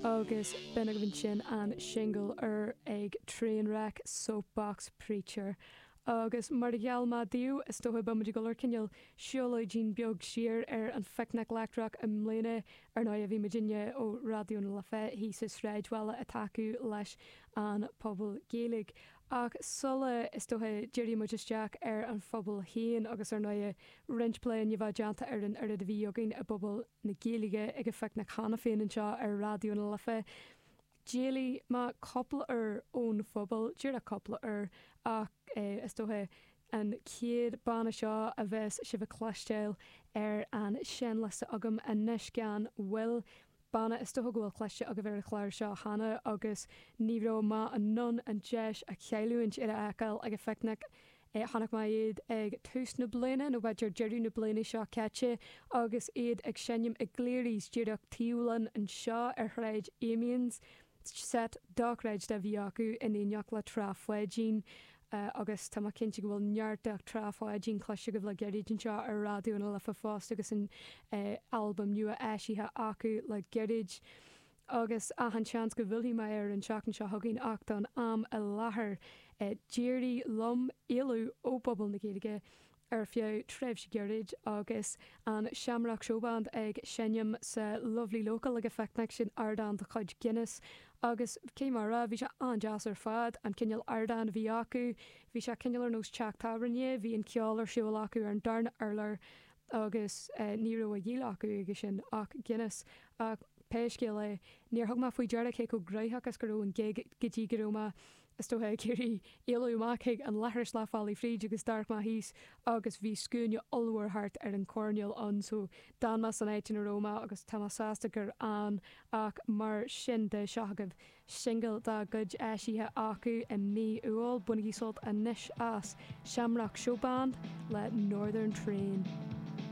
Agus b'in agaibh ansin an singil úr ag Trainwreck, Soapbox Preacher. Agus mar a gheall mé daoibh, is dócha, beimid ag dul ar cineál siúlóidín beag siar ar an Phicnic Leictreach i mbliana. Ar ndóighe, bhí muidinne ó Raidió na Life thíos sa Sráidbhaile ag tacú leis an Phuball Gaeilge. Ach sula, is dócha, dírigh muid isteach ar an Phuball féin, agus ar ndóighe, roinnt plé i ndiaidh a bheith déanta ar an oiread a bhí againn i bPuball na Gaeilge ag an Phicnic cheana féin anseo ar Raidió na Life. D'éalaigh mé cúpla uair ón phuball, díreach cúpla uair, ach is dócha an chéad banna seo a bheas sibh a chloisteáil ar an seinnliosta agam anois gan mhoill, banna is dócha go bhfuil cloiste agaibh ar an chlár seo cheana agus ní raibh mé in ann an deis a chailliúint iad a fheiceáil ag an Phicnic Chonaic mé iad ag tús na bliana, nó b'fhéidir deireadh na bliana seo caite, agus iad ag seinm i gCleary's, díreach taobh linn anseo ar Shráid Amiens. Seit dochreidte a bhí acu, in éineacht le Trá Pháidín, agus tá mé cinnte go bhfuil neart de Trá Pháidín cloiste agaibh le gairid anseo ar Raidió na Life fosta agus an albam nua eisithe acu le gairid. agus achan seans go bhfillfidh mé air an tseachtain seo chugainn ach don am i láthair d'éirigh liom éalú ó Phuball na Gaeilge ar feadh tréimhse gairid agus an Shamrock Showband ag seinm sa Lovely Local ag an Phicnic, sin ardán de chuid Guinness agus cé mar a, bhí sé an-deas ar fad, an cineál ardáin a bhí acu, bhí sé cineál ar nós teach tábhairne, bhí an ceol ar siúl acu ar an darna urlár agus ní raibh á dhíol acu aige sin ach Guinness, ach pé scéal é, níor thug mé faoi deara cé chomh gnaitheach is go raibh an gig go dtí go raibh mé, is dócha, ag iarraidh éalú amach chuig an leithreas leath bealaigh fríd agus d'amharc mé thíos agus bhí scuaine ollmhór thart ar an choirnéal ann so d'fhan mé san áit ina raibh mé agus tá mé sásta gur fhan ach mar sin de, seo chugaibh. singil dá gcuid eisithe acu i mí Iúil, bainigí sult anois as, Shamrock Showband le Northern Train.